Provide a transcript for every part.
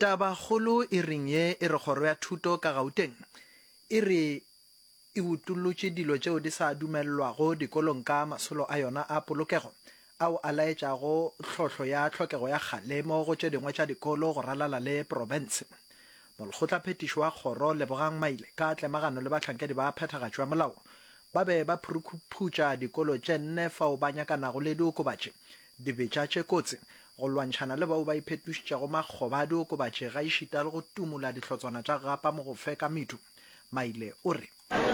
Tabakgolo e reng ye e re kgoro ya thuto ka Gauteng e re e utollotše dilo tšeo di sa dumelelwago dikolong ka masolo a yona a polokego ao a laetšago tlhohlo ya tlhokego ya kgalemo go tše dingwe tša dikolo go ralala le profense. Molkgotlaphethiši wa kgoro Lebogang Maile ka tlemagano le bahlankedi ba phethagatšo ya molao ba be ba phurukhuphutša dikolo tše nne fao ba nyakanago le diokobatši Dibetša tše kotsi, Go lwantšhana le bao ba iphetošitšego makgoba a diokobatši gaešita le go tumola dihlotswana tša gapa mo go fe ka medu. Maile o re.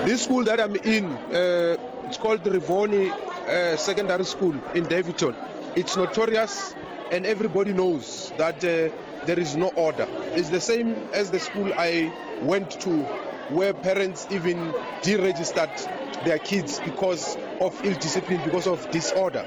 This school that I'm in, uh, it's called Rivoni uh, Secondary School in Daveyton. It's notorious and everybody knows that uh, there is no order. It's the same as the school I went to where parents even deregistered their kids because of ill discipline, because of disorder.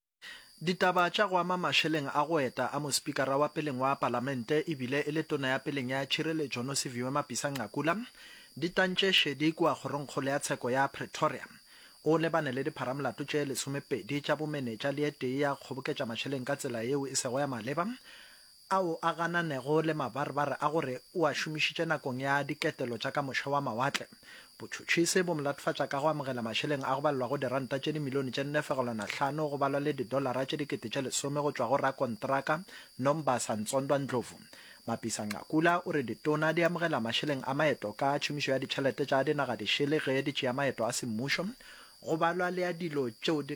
Ditaba tša go ama mašeleng a go eta a mospikara wa peleng wa Palamente e bile e le tona ya peleng ya tšhireletšo Nosiviwe Mapisa-Nqakula di tantše šedi kua kgorongkgolo ya tsheko ya Pretoria. O lebane le dipharamolato tše lesomepedi tša bomenetša le ye tee ya kgoboketša mašeleng ka tsela yeo e sego ya maleba, ao a gananego le mabarebare a gore o a šomišitše nakong ya diketelo tša ka moše wa mawatle. Botšhotšhisi bo mo latofatša ka go amogela mašeleng a go balelwago diranta tše dimilione tše nne fegelwana hlano go balwa le didolara tše dikete tše lesome go tšwa go rakontraka Nombasa Ntsondwa Ndlovu. Mapisa-Nqakula o re ditona di amogela mašeleng a maeto ka tšhomišo ya ditšhelete tša dinagadišele ge di tšea maeto a semmušo go balwa le a dilo tšeo di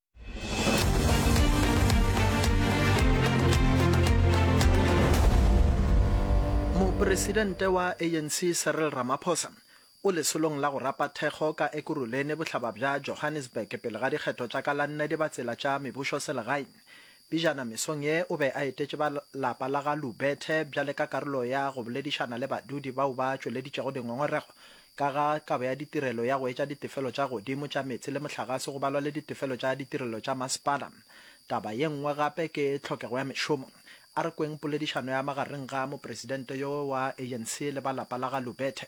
Mopresidente wa ANC Cyril Ramaphosa o lesolong la go rapa thekgo ka Ekurhuleni bohlaba bja Johannesburg pele ga dikgetho tša ka la nne di ba tsela tša mebušo selegaeng. Pejana mesong ye o be a etetše ba lapa la ga Lubethe bjale ka karolo ya go boledišana le badudi bao ba tšweleditšego dingongorego ka ga kabo ya ditirelo ya go etša ditefelo tša godimo tša meetse le mohlagase go balwa le ditefelo tša ditirelo tša masepala. Taba ye nngwe gape ke tlhokego ya mešomo. A re kweng poledišano ya magareng ga mopresidente yo wa ANC le ba lapa la ga Lubethe.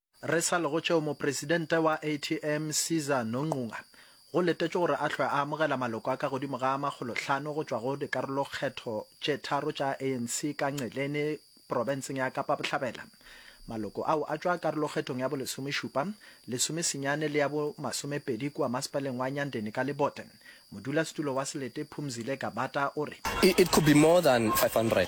Re sa le go tšeo, Mopresidente wa ATM, Caesar Nonqunga, go letetšwe gore a hlwe a amogela maloko a ka godimo ga a makgolo hlano go tšwa go dikarolokgetho tše tharo tša ANC ka Nceleni, profenseng ya Kapa Bohlabela. Maloko ao a tšwa karolokgethong ya bolesomešupa, lesomesenyane le ya bomasomepedi kua masepaleng wa Nyandeni ka lebote. Modulasetulo wa Selete, Phumzile Gabata, o re. It could be more than 500.